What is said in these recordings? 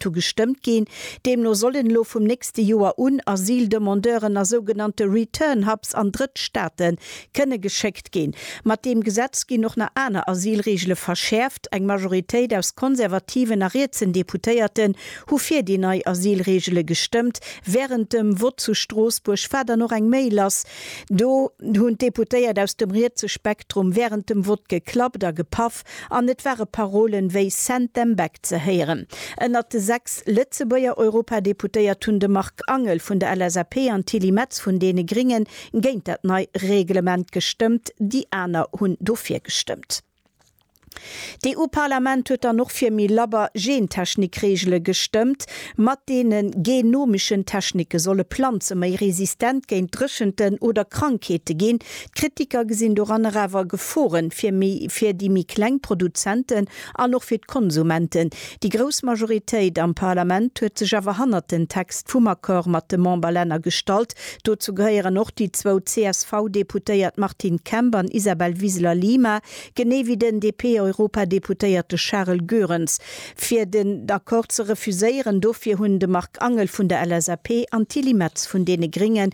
Hu gestëmmt ginn. Deemno sollen elo vum nächste Joer un Asyldemandeuren a sougenannte Return Hubs an Drëttstaate kënne geschéckt ginn. Mat deem Gesetz ginn och nach aner Asylreegele verschäerft. Eng Majoritéit aus konservativen a rietsen Deputéierten hu fir déi nei Asylreegele gestëmmt. Wärend dem Vott zu Stroossbuerg war dann och eng Méi lass. Do hunn d'Deputéiert aus dem rietse Spektrum wärend dem Vott geklappt a gepaff. Kap an et ware Parolen wéi Send them back ze héieren. Ënnert de sechs Lëtzebuerger Europadeputéiert hunn de Marc Angel vun der LSAP an d'Tilly Metz vun deene Gringen géint dat nei Reglement gestëmmt, déi aner hunn dofir gestëmmt. D'EU-Parlament huet dann och fir méi labber Gentechnikregele gestëmmt, mat deene genomischen Technike solle Planze méi resistent géint Dréchenten oder Krankheete ginn, D'Kritiker gesinn doranner awer Geforen fir méi fir déi méi kleng Produzenten an och fir d'Konsumenten. Déi grouss Majoritéit am Parlament huet sech awer hannert den Text vum Accord mat de Memberlänner gestallt. Dozou gehéieren och déi zwou CSV-Deputéiert Martine Kemp an Isabel Wiseler-Lima, genee wéi den DP-Europadeputéierte Charel Goerens. Fir den Accord ze refuséieren, dofir hunn de Marc Angel vun der LSAP an d'Tilly Metz vun deene Gringen,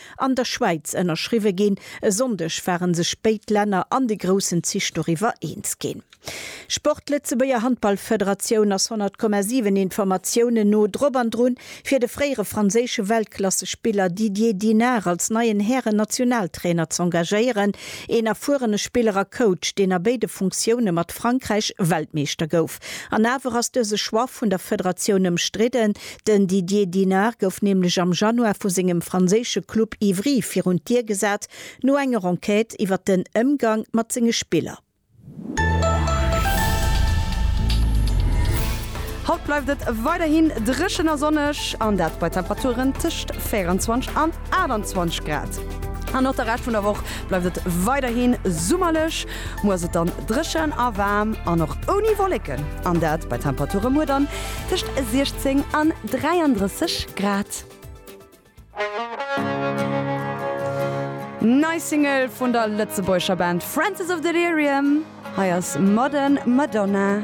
an der Schwäiz ënnerschriwwe ginn. E Sonndeg ware sech béid Länner an de groussen Zich doriwwer eens ginn. Sport, D'Lëtzebuerger Handballfederatioun ass 100,7 Informatiounen no drop an drun, fir de fréiere franséische Weltklassespiller Didier Dinard als neien Hären-Nationaltrainer z'engagéieren. Een erfuerene Spiller a Coach, deen a béide Funktioune mat Frankräich Weltmeeschter gouf. An awer ass dëse Choix vun der Federatioun ëmstridden. Den Didier Dinard gouf nämlech am Januar vu sengem franséische Club Ivry virun d'Dier gesat, no enger Enquête iwwer den Ëmgang mat senge Spiller. Haut bleift et weiderhin dréchen a sonneg, an dat bei Temperaturen tëscht 24 an 28 Grad. An och de Rescht vun der Woch bleift et weiderhi summerlech. Muer ass et dann dréchen a waarm an och ouni Wolleken, an dat bei Temperature muer dann tëscht 16 an 33 Grad. Nei Single vun der lëtzebuergescher Band Francis of Delirium, hei ass Modern Madonna.